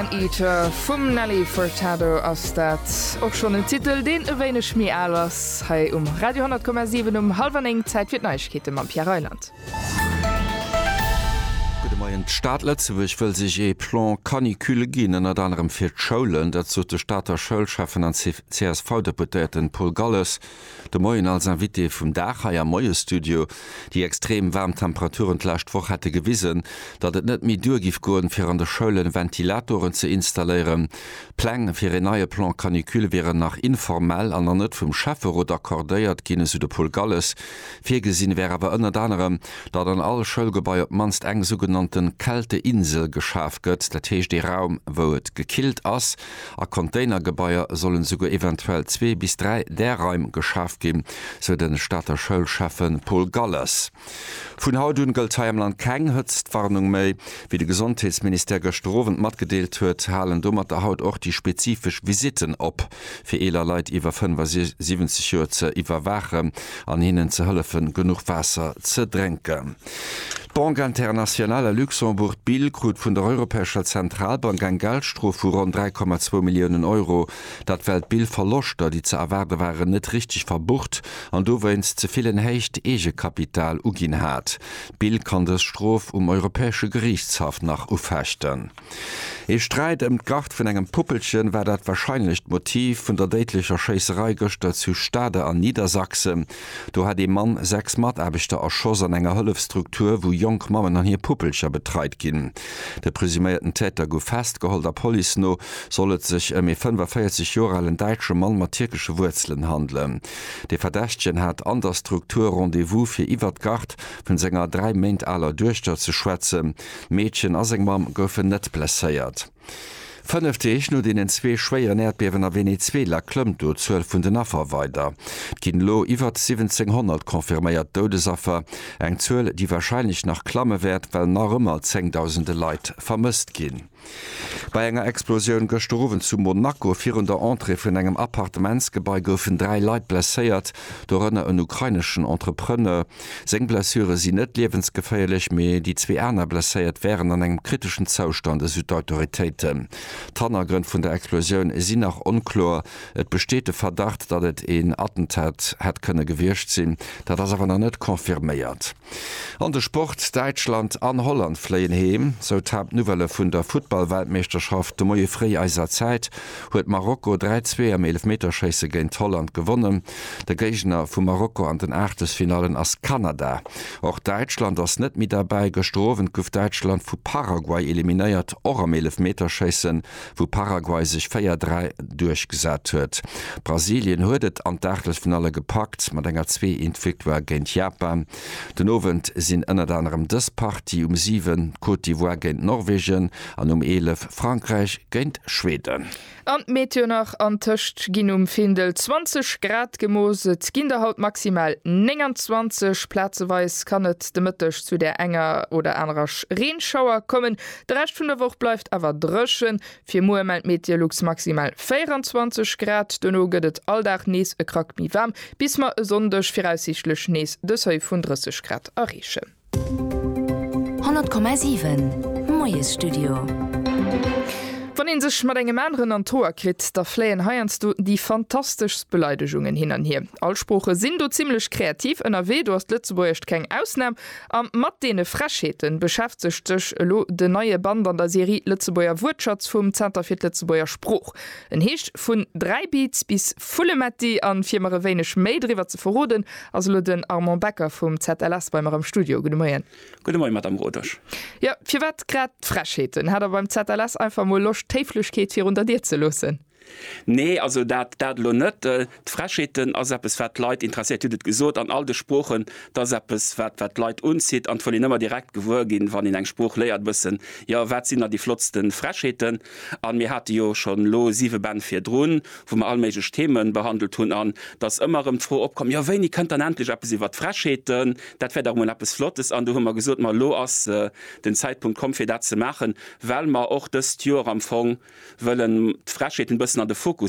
Man Eater vum Nelly Furtado ass dat. Och schonn en Titel, deen e wéineg méi al ass. Hei um Radio 10,7 um hallwer néng. Zäit fir d'Neiegkeete mam Pierre Reyland. Gudde Moien. D'Stad Lëtzebuerg wëll sech ee Plan canicule ginn, ënnert anerem fir d'Schoulen. Dat sot de Stater Schoulschäffen an CSV-Deputéierten Paul Galles. De Moien als Invité vum Dag hei am Moiesstudio. Déi extrem waarm Temperaturen d'lescht Woch hätte gewisen, datt et net méi duer giff goen, fir an de Schoulen Ventilatoren ze installéieren. D'Pläng fir een neie Plan canicule wieren nach informell an nach net vum Schäfferot accordéiert ginn, esou de Paul Galles. Virgesinn wär awer ënnert anerem, datt an all Schoulgebai op d'mannst eng sougenannten Kälteinsel geschaf gëtt, dat heescht ee Raum, wou et gekillt ass, A Container-Gebaier sollen esouguer eventuell zwee bis dräi Därraim geschaf ginn, sou de Stater Schoulschäffe Paul Galles. Vun haut un gëllt hei am Land keng Hëtztwarnung méi. Wéi de Gesondheetsministère gëschter Owend matgedeelt huet, halen domatter haut och déi spezifesch Visitten op, fir eeler Leit iwwer 75 Joer ze iwwerwaachen an hinnen ze hëllefen, genuch Waasser ze drénken. D'Banque Internationale à Luxembourg, BIL, krut vun der Europäescher Zentralbank eng Geldstrof vu ronn 3,2 Milliounen Euro. Dat well d'BIL Verloschter, déi ze erwaarde waren, net richteg verbucht an dowéinst ze vill en héicht Eegekapital uginn hat. D'BIL kann dës Strof um Europäesche Geriichtshaff nach ufechten. Ee Sträit ëm d'Gart vun engem Puppelchen war dat warscheinlecht Motiv vun der déidlecher Schéisserei gëschter zu Stade an Niedersachsen. Do hat ee Mann sechs Mataarbechter erschoss an enger Hëllefsstruktur, wou jonk Mammen an hir Puppelcher betreit ginn. De presuméierten Täter gouf festgeholl. Der Police no soll et sech ëm ee 45 Joer alen däitsche Mann mat tierkesche Wuerzelen handelen. De Verdächtegen hat an der Struktur Rendez-vous, fir iwwert d'Gart vun senger dräi Méint aler Duechter ze schwätzen. D'Meedchen a seng Mamm goufen net blesséiert. Fënnef Deeg no deenen zwee schwéieren Äerdbiewen a Venezuela klëmmt do d'Zuel vun den Affer weider. Et ginn elo iwwert 1700 confirméiert Doudesaffer, eng Zuel, déi warscheinlech nach klamme wäert, well nach ëmmer Zéngdausende Leit vermësst ginn. Bei enger Explosioun gëschter Owend zu Monaco virun der Entrée vun engem Appartementsgebai goufen dräi Leit blesséiert, dorënner en ukraineschen Entrepreneur. Seng Blessure sinn net liewensgeféierlech, mee déi zwee aner Blesséiert wären an engem kriteschen Zoustand, esou d'Autoritéiten. D'Hannergrënn vun der Explosioun sinn nach onkloer. Et besteet de Verdacht, datt et een Attentat hätt kënne gewiescht sinn, dat ass awer nach net confirméiert. An de Sport, Däitschland an Holland fléien heem, sou d'Haaptnouvellë vun der Futtball-Weltmeeschterschaft. De Moie fréi eiser Zäit huet Marokko 3, 2 am Eelefmeterschéisse géint Holland gewonnen. De Géigner vu Marokko an den Aachtelsfinallen ass Kanada. Och Däitschland ass net méi derbäi. Gëschter Owend gouf Däitschland vu Paraguay eliminéiert, och am Eelefmeterschéissen. wou Paraguay sech 4, 3 duerchgesat huet. Brasilien huet et an d'Aachtelsfinalle gepackt mat enger 2, 1 Victoire géint Japan. Den Owend sinn ënnert anerem dës Partie, um 7 Côte d'Ivoire géint Norwegen an um 11 Frankräich géint Schweden. An d'Meteo nach, An Tëscht ginn um Findel 20 Grad gemooss, et ginn der haut maximal 29. Plazeweis kann et de Mëtteg zu där enger oder anerer Reenschauer kommen, De Rescht vun der Woch bleift awer dréchen. Fir muer mellt Meteolux maximal 24 Grad, duerno gëtt et all Dag nees e Krack méi waarm, bis mer e Sonndeg viraussiichtlech nees de Seuil vun 30 Grad erreechen. 100,7 Moiesstudio. Wann een sech mat engem aneren an d'Hoer kritt, da fléien heiansdo déi fantasteschst Beleidegungen hin an hier. All Sprooche sinn do zimmlech kreativ ënnerwee, do ass d'Lëtzebuergescht keng Ausnam. A mat deene Frechheete beschäftegt sech elo den neie Band an der Serie Lëtzebuerger Wuertschatz vum Zenter fir d'Lëtzebuerger Sprooch. En heescht Vun Dräibiiz bis Vullemetti a fir mer e wéineg méi driwwer ze verroden, ass elo den Armand Becker vum ZLS bei mer am Studio. Gudde Moien. Gudde Moien, Madame Rodesch. Jo, firwat grad d'Frechheeten? Hat Der beim ZLS einfach mol Loscht, d'Héiflechkeet virun der Dier ze loossen? Nee, also dat, dat elo net. D'Frechheeten ass eppes, wat d'Leit interesséiert, hutt et gesot, an all de Sproochen. Et ass eppes, wat, wat d'Leit unzitt, an et wëll een ëmmer direkt gewuer ginn, wann een eng Sprooch léiert, e bëssen, jo, wat sinn da déi flottste Frechheeten. An mir hate jo schonn elo siwe Bänn virdrun, wou mer all méiglech Themen behandelt hunn, an et ass ëmmer erëm d'Fro opkomm, jo, wéini kënnt dann endlech eppes iwwert d'Frechheeten, dat wär dach emol eppes Flottes. An do hu mer gesot, ma elo ass den Zäitpunkt komm, fir dat ze maachen. well mer och dëst Joer am Fong wëllen d'Frechheeten e bëssen an de Fokus